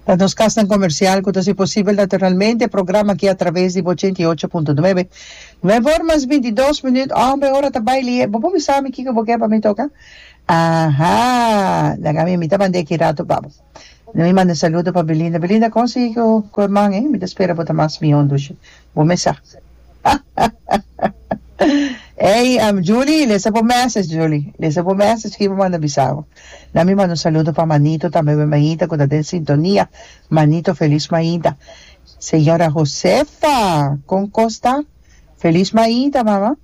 Ta nos kasnan komersial ku ta hasi posibel naturalmente e programa aki atraves di bo ochenta i ocho punto nuebe. Nuebe or mas binti dos minüt. Hòmber, ora ta bai lihe. Bo por bisa mi kiko bo ke pa mi toka? Aha! Dan ami, mi ta manda e kirato pa bo. Dan mi manda saludo pa Belinda. Belinda, kon sigui ku e man ei? Mi ta spera bo ta mas mihó, Ndushi. Bo mesa. Ey am Julie lesa bo message Julie lesa bo message ki bo manda bisabo na mi manda un saludo pa manito tambe mi mainta ku ta den sintonia manito feliz mainta señora Josefa kon kos ta feliz mainta mama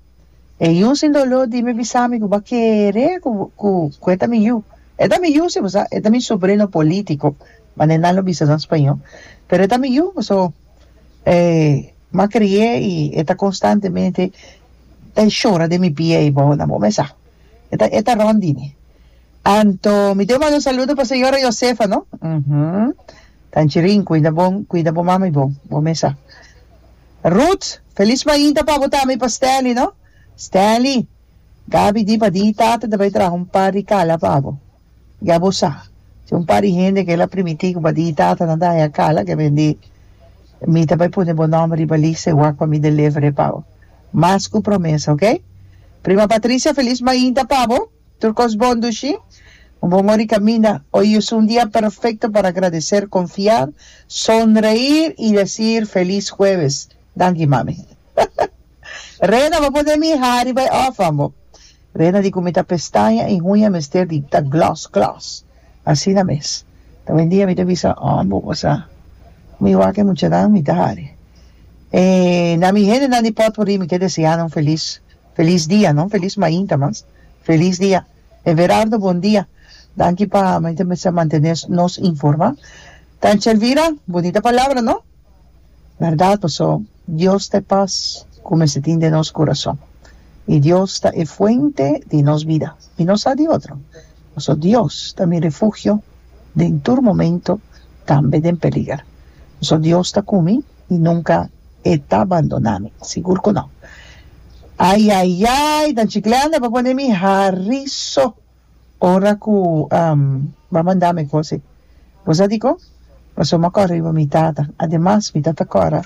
e yu sin dolor dime bisami ku bo a kere ku e ta mi yu e ta mi yu si bo sa e ta mi sobrino politico mane nan lo bisa nan spañol pero e ta mi yu so e ma cri'é y e ta constantemente ta shora den mi pie y bow nan bo mesa e ta e ta rond di mi anto mi debe manda un saludo pa señora Josefa no umm tan chirin cuida bo cuida bo mama y bo bo mesa Ruth feliz mainta pa bo tambe y pa Stanley no Stanley Gaby di pa di tata ta bay traha un par di cala pa bo. Ya bo sa, tin un par di hende ke la primití ku badí data na daña e kala, ke bendí, mi ta bai pone bo nòmber riba lista i wak pa mi deliver e pa bo. Mas ku promesa, ok? Prima Patricia, felis mainta pa bo! Tur kos bon dushi! Un bon ora di kaminda! Oy es un dia perfekto pa agradeser, konfiá, sonreir i desir felis hueves! Danki, mami. Reda, bo pone mi hari bai òf, ambo. Rena di ku mi ta pestaña i huña mester di ta glos glos asina mes. Ta wen dia mi ta bisa oh bo pasá ku mi wak e muchanan mi ta hari. E na mi hendenan di pòtpurrí mi ke deseá nan felis felis dia, no felis mainta mas felis dia. Everardo bon dia, danki pa mi ta mester mantené nos informá. Tantje Elvira, bonita palabra no? Bèrdat paso. Dios ta e pas ku mester tin den nos kurason, i Dios ta e fuente di nos bida, i no sa di otro. Pasobra Dios ta mi refugio den tur momento, tambe den peliger. Pasobra Dios ta ku mi, i nunka E ta bandona mi, sigur ku no. Ayayay! Ta un chikleanda pa pone mi harí so! Ora ku Bo a manda mi ku si, Bo sa diko? Pasobra mi a kora riba mi Tata. Ademas, mi ta ta kora,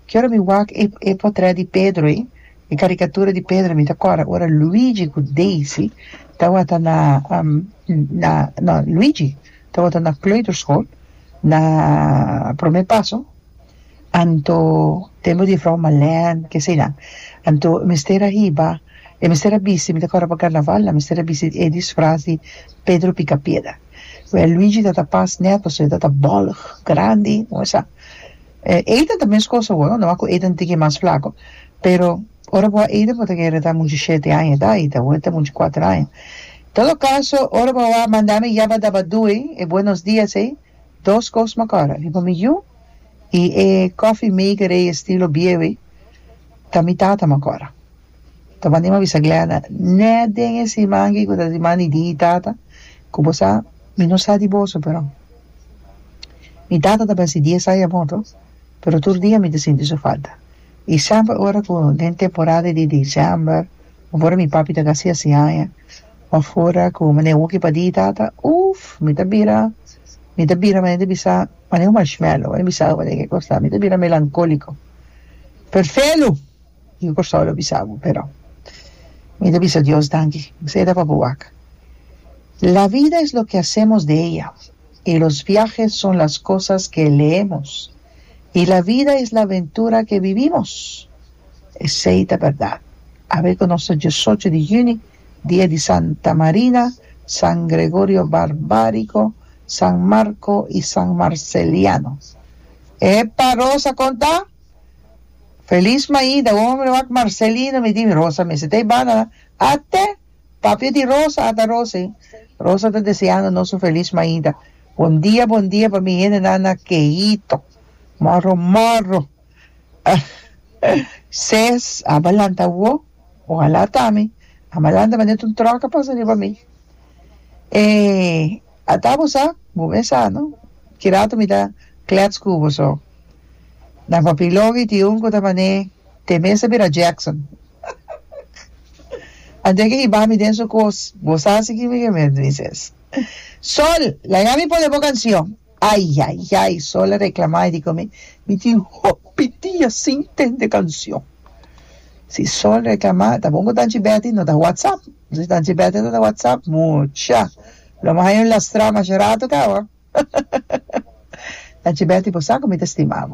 ke ora mi wak e, e potrèt di Pedro ei, e karikatura di Pedro, mi ta kora ora Luigi ku Daisy tabata na, na, no, Luigi tabata na kleuterskol, na Prome Paso. anto tempo di Vrouw Malèn ke eseinan anto mester a hiba e mester a bisti mi ta kòrda pa karnaval nan mester a bisti e disfraz di Pedro Picapiedra wèl Luigi ta ta pas nèt pasobra e ta ta bòlg grandi wou sa e Ethan ta mes kos awor nada mas ku Ethan ta tiki e mas flaku pero ora bo a Ethan bo ta kere ta muchu shete aña edad i ta awor ta muchu kuater aña todo kaso ora bo a wou a manda mi yaba daba dui e buenos dias ei dos kos makor a riba mi yu i e coffee maker ei estilo biewe ta mi tata makor. Ta band'é m'a bisa Glenda, nèt den e siman ki ku ta siman di di tata, ku bo sa mi no sa di boso pero mi tata ta basi dies aña a morto pero tur dia mi ta sinti su falta i semper ora ku den temporada di diciember of ora mi papi ta kasi hasi aña Pa fora cu mane Wookie pa di tata, Uff, mi ta bira, mi ta bira mane ta bisa, mane un marshmallow, mane bisabo mane ke cosa ta, mi ta bira melancolico. Perfelu! Mi cu Corsao lo bisa bo, pero mi ta bisa Dios danki, esey ta papou wak. La vida es lo que hacemos de ella, y los viajes son las cosas que leemos, y la vida es la aventura que vivimos. Esey ta berdad. Awe cu nos ta diesocho di juni, di e di Santa Marina, San Gregorio Barbarico, San Marco y San Marceliano. Epa Rosa con ta? Feliz maida hombre wak Marcelino mi di mi Rosa mester ta e banda la a te papia di Rosa a ta Rose Rosa ta deseando nos un feliz maida bon dia bon dia pa mi hende nan na Keito morro morro. Ses, aba lanta awo, ohalá ta mi, aba lanta manera t'un troka pasa riba mi. E ata bo sa, bo mes sa no, ki rato mi ta klèts ku bo so. Na papia loke i tin un ku ta man'é te mes a bira Jackson. Antes ke hiba mi den su kos, bo sa si kimi ke mi a duna mi ses. Sol, laga mi pone bo kansion. Ayayay Sol a reclama y dico mi, mi tin hopi dia sin tende cancion. Si Sol reclama ta bon cu Tanchi Betty no ta WhatsApp. Si Tanchi Betty no ta WhatsApp, mucha! Lo mi haya un lastra masha rato caba. Tanchi Betty bo sa cu mi ta stima bo.